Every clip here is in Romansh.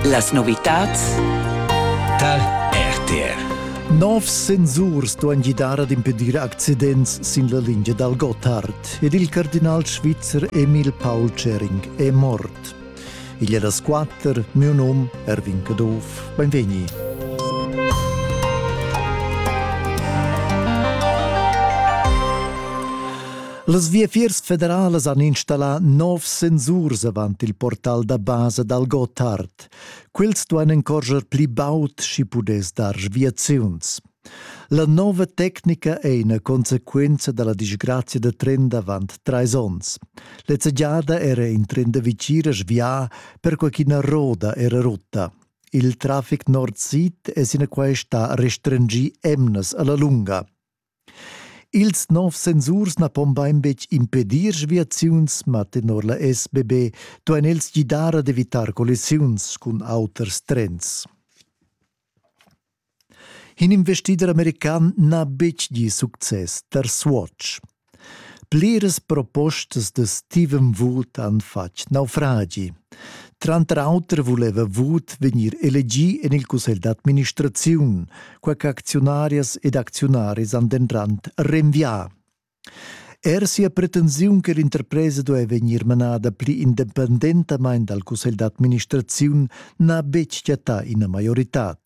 Las novitads tar RTR. Novs sensurs duan gidar ad impedir accidents sin la lingia dal Gotthard ed il cardinal svizzer Emil Paul Schering è mort. Igl è das quatter, mio num Erwin Caduff. Benvegni. Las viafiers federalas han installà novs sensurs avant il portal da basa dal Gotthard. Quels duain encorscher pli baud sch'i pudess dar viaziuns. La nova tecnica è ina consequenza da la disgrazia da tren d'avant trais onns. Lezza giada era in tren da vicina svià perquai ch'ina roda era rutta. Il traffic nord-sid è sinaquai stà restringì emnas a la lunga. Ils nov sensurs na pon bain betg impedir sviaziuns, ma tenor la SBB duain els gidar ad evitar collisiuns cun auters trens. In investider american n'ha betg gì success tar Swatch. Pliras propostas da Steven Wood han fatg naufragi. Tranter auter vuleva Wood vegnir elegì en il cussegl d'administraziun, quai ch'acziunarias ed acziunaris han dentant renvià. Er sia pretensiun che l'interpresa duai vegnir manada pli independentamain dal cussegl d'administraziun n'ha betg chattà ina maioritad.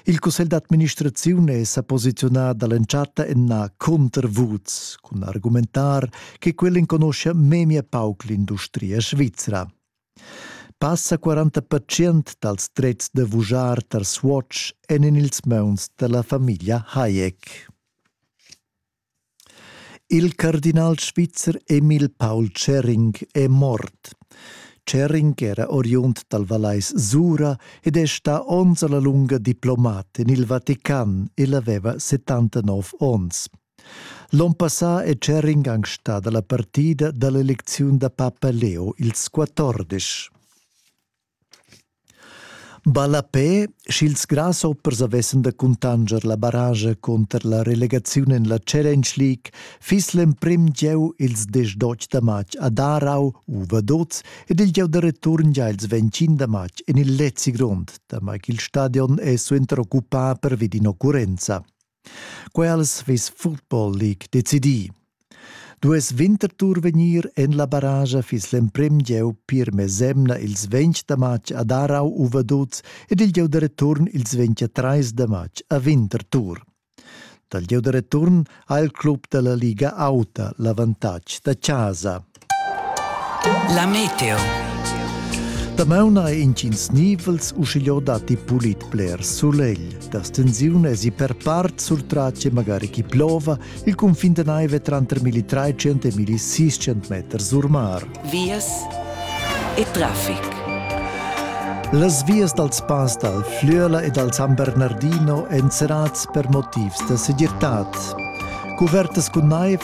Il cussegl d'administraziun è sa posiziunà da l'entschatta ennà cunter Woods cun argumentar che quel enconuscia memia pauc l'industria svizra. Passa 40% dals drets da vujar tar Swatch èn en ils mauns da la famiglia Hayek. Il cardinal svizzer Emil Paul Schering è mort. Schering era oriund dal Vallais Sura ed è stà onns a la lunga diplomat en il Vatican e aveva 79 onns. L'on passà è Cher ingang stada la partida da l'elecziun da papa Leo ils quattordisch. Ballapè, sch'ils grasshoppers avessan da cuntanscher la barragia cunter la relegaziun en la Challenge League, fiss l'emprim gieu ils desch d'otg da matg a Darau u Vaduz ed il gieu da return gia ils ventschin da matg en il Lezi Grond, damai ch'il stadion è suenter occupà pervi d'in'occurrenza. Quels ves Football League decidì. Duess Winterthur vegnir en la barragia fiss l'emprim gieu pir mesemna ils 20 da matg a Darau u Vaduz ed il gieu da return ils 23 da matg a Winterthur. Dal gieu da return ha il club da la Liga auta l'avantatg da chasa. La meteo. Damaun ha intgins nivels uschigliò datti pulit bler sulegl. Da stensiun esi per part sul tratg magari chi plova, il cunfin da naive tranter milli trecent e milli seicent meters or mar. Vias e trafic. Las vias dals pass dal Flüela e dal San Bernardino èn serrads per motivs da segirtad. Cuvertas cun naiv